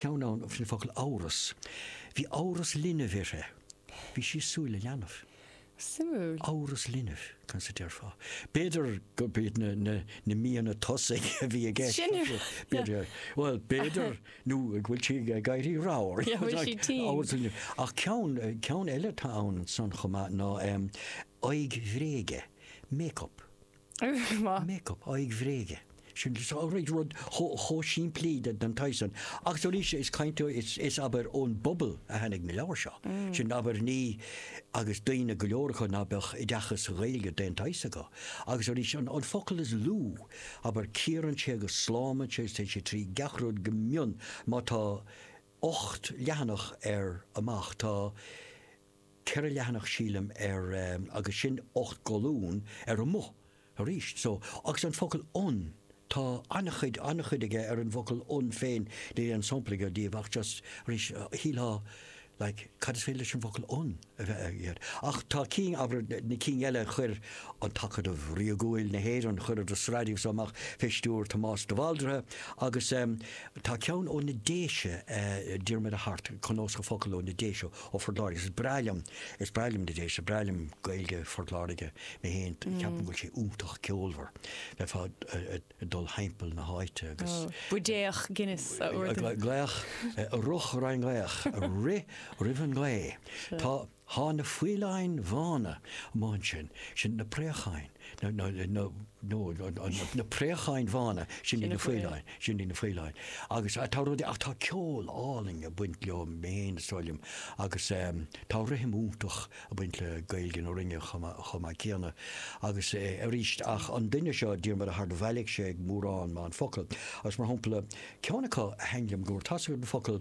ceann ann faoin bhfocal 'amhras'. Bhí amhras linbh uirthi. Bhí sí ag súil le leanbh. Suimiúil. Amhras linbh, conas a déarfá? B'fhéidir gurb iad na míonna tosaigh a bhí i gceist. Sin é. B'fhéidir. Bhuel, b'fhéidir nó go bhfuil sí ag éirí ramhar. Yeah, bhfuil sí tinn? Amhras linbh. Ach ceann, ceann eile atá ann ansan chomh maith ná aghaidh bhréige, make-up. Make up, aghaidh bhréige. Sin rud chomh simplí den tsaghas san. Agus arís, is caint is abair ón bpobal a tháinig na leabhair seo. Sin abair ní, agus daoine go leor acu ná beadh oideachas sa Ghaeilge d'aon tsaghas acu. Agus arís, an focal is lú, abair, cíorann sé agus slámann sé agus téann sé trí gach rud go mion. Má tá ocht leathanach ar amach, tá. ceithre leathanach sílim ar agus sin ocht gcolún ar amuigh aríst so agus an focal 'an' tá an-chuid, an-chuid aige ar an bhfocal 'an' féin, níl aon sampla agam díobh ach just arís shíltheá like cad is féidir leis an bhfocal 'an' a bheith aige air? Ach tá cinn, abair na cinn eile chuir An tAcadamh Ríogúil na hÉireann, chuireadar sraith díobh so amach fé stiúir Tomás de Bhaldraithe agus tá ceann ó na Déise, Diarmaid Ó hAirt, Cnósach Focal ó na Déise, Ó Phort Láirge. Is breá liom, is breá liom na Déise, is breá liom Gaeilge Phort Láirge mé féin, ceapaim go bhfuil sí iontach ceolmhar bheifeá ag dul thimpeall na háite agus. Ó, buidéach Guinness a ordú. Glaoch, ruch roimh an ngaoch, rith roimh an ghaoth. Tá, thá na faoileáin bhána amuigh ansin, sin na préacháin. Na préacháin bhána, sin iad na faoileáin, sin iad na faoileáin. Agus tá rudaí, ach tá ceol álainn ag baint leo féin is dóigh liom. Agus tá rithim iontach ag baint le Gaeilge na Rinne chomh maith céanna. Agus arís, ach an duine seo, Diarmuid Ó hAirt, do bhailigh sé mórán maith focal. Agus mar shampla, ceann acu a thaithin liom go mór, tá 'fhios agat an focal,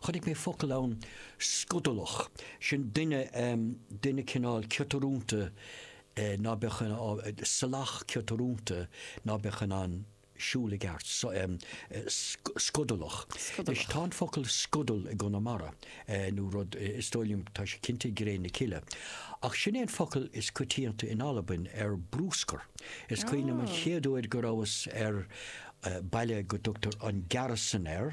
Chonaic mé focal ann, scudalach, sin duine, duine cineál ciotrúnta ná beadh in ann, salach ciotrúnta ná beadh in ann siúl i gceart, scudalach. Anois tá an focal scudal i gConamara nó rud, is dóigh liom, tá sé cinnte i gCré na Cille. Ach sin é an focal is coitianta in Albain ar bruscar. Is cuimhin liom an chéad uair go rabhas ar baile go dtugtar an Gearasdan air,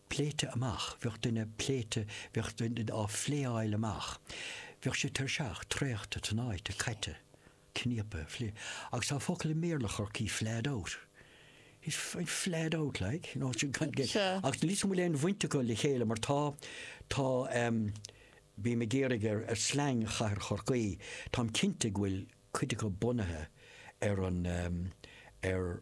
pléite amach, bheadh duine pléite, bheadh duine á phléáil amach, bheadh sé tuirseach, traochta, tnáite, caite, cníopa, fli. Agus tá focal i mBéarla Chorcaí flahed out. He's f, flahed out like, you know, sin gan, gan, Sure. agus níl 'fhios agam an bhfuil aon bhaint acu le chéile mar tá, tá em bím ag iarraidh ar, ar slang chathair Chorcaí, táim cinnte go bhfuil cuid acu bunaithe ar an em, ar,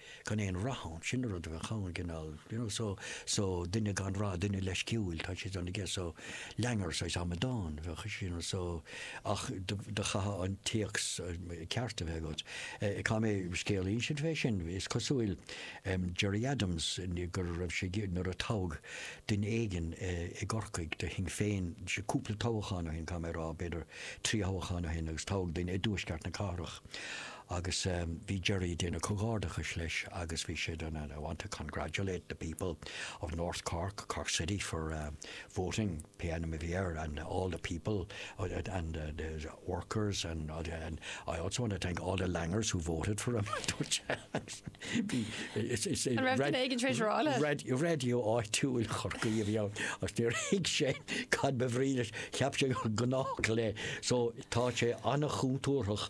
gan aon rath ann, sin an rud a bheadh ann, an cineál, you know, so, so, duine gan rath, duine leisciúil, tá siad ann aige, so, languor, saghas amadán a bheadh ansin, you know, so, ach do chaithfeá an comhthéacs ceart a bheith agat. Eh, tá mé, scéal eile faoi sin, is cosúil, em, Gerry Adams, go raibh sé ag, nuair a toghadh duine éigin i gCorcaigh do Shinn Féin, sé, cúpla toghachán ó shin, caithfidh mé a rá, b'fhéidir trí thoghachán ó shin agus toghadh duine i dtuaisceart na cathrach, Agus bhí Gerry a' déanamh comhghairdeachais leis agus bhí sé, I want to congratulate the people of North Cork, Cork City for voting, pé ainm a bhí air, and all the people and the workers and I also want to thank all the Langers who voted for him, a dúirt sé. Bhí, is é, raidió áitiúil Chorcaí a bhí ann agus níor thuig sé cad ba bhrí leis, cheap sé gur gnách le, so tá sé an-chontúrthach